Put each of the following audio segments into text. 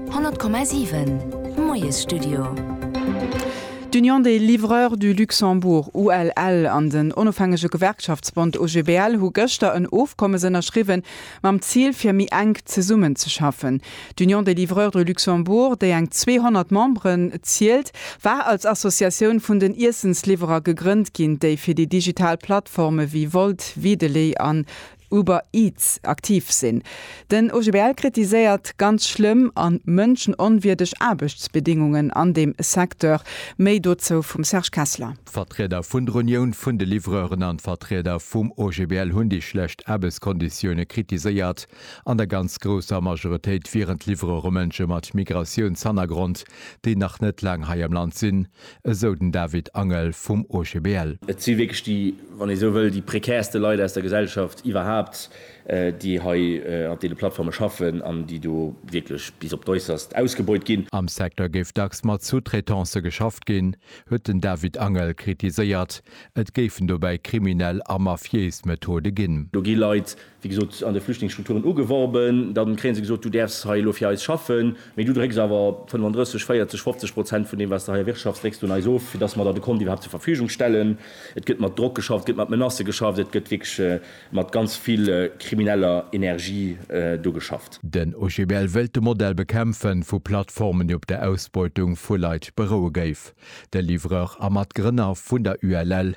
100,7 Moiesstudio. D'Union des livreurs du Luxembourg, ULL, an den onofhängege Gewerkschaftsbond OGBL hu gëschter en Ofkommes ënnerschriwwen, mam Zil fir méi enk zesummen ze schaffen. D'Union des livreurs du Luxembourg, déi eng 200 Memberen zielt, war als Associatioun vun den Iessensliwwerer gegrënnt ginn, déi fir déi digital Plattforme wéi Wolt, Wideley an Uber Eats aktiv sinn. Den OGBL kritiséiert ganz schlëmm an mënschenonwierdeg Aarbechtsbedingungen an deem Secteur. Méi dozou vum Serge Kessler. D'Vertrieder vun der Unioun vun de Livreuren an d'Vertrieder vum OGBL hunn déi schlecht Aarbechtskonditioune kritiséiert. An der ganz grousser Majoritéit wieren d'Livreure Mënsche mat Migratiounshannergrond, déi nach net laang hei am Land sinn. esou den David Angel vum OGBL. Et si wierklech déi, wann ee esou wëll, déi prekärste Leit aus der Gesellschaft iwwerhaapt, déi hei an deene Plattforme schaffen an déi do wierklech bis op d'Äusserst ausgebeut ginn. Am Secteur géif dacks mat Sous-traitancë geschafft ginn, huet den David Angel kritiséiert. Et géifen dobäi kriminell a mafiéis Methode ginn. Do gi Leit wéi gesot, an de Flüchtlingsstrukturen ugeworben, da kréie se gesot, du däerfs hei elo fir eis schaffen, mee du drécks awer 35, 40, 50 Prozent vun deem, wat s de hei erwirtschafts, drécks du un eis of, fir dass mer der de Kont iwwerhaapt zur Verfügung stellen. Et gëtt mat Drock geschafft, et gëtt mat Menacë geschafft, et gëtt wierklech mat ganz vill krimineller Energie do geschafft. Den OGBL wëllt de Modell bekämpfen, vu Plattformen, déi op der Ausbeutung vu Leit beroue géif. De Livreur a Matgrënner vun der ULL,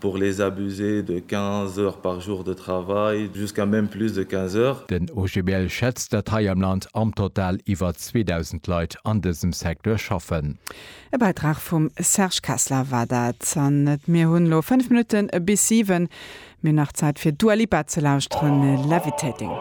Pour les abusés de 15 heures par jour de travail, jusqu'à même plus de 15 heures. Den OGBL schätzt, datt hei am Land am Total iwwer 2.000 Leit an dësem Secteur schaffen. E Bäitrag vum Serge Kessler war dat. An et mir hunn elo 5 Minutte bis 7, mir hunn nach Zäit fir Dua Lipa ze lauschteren, Levitating.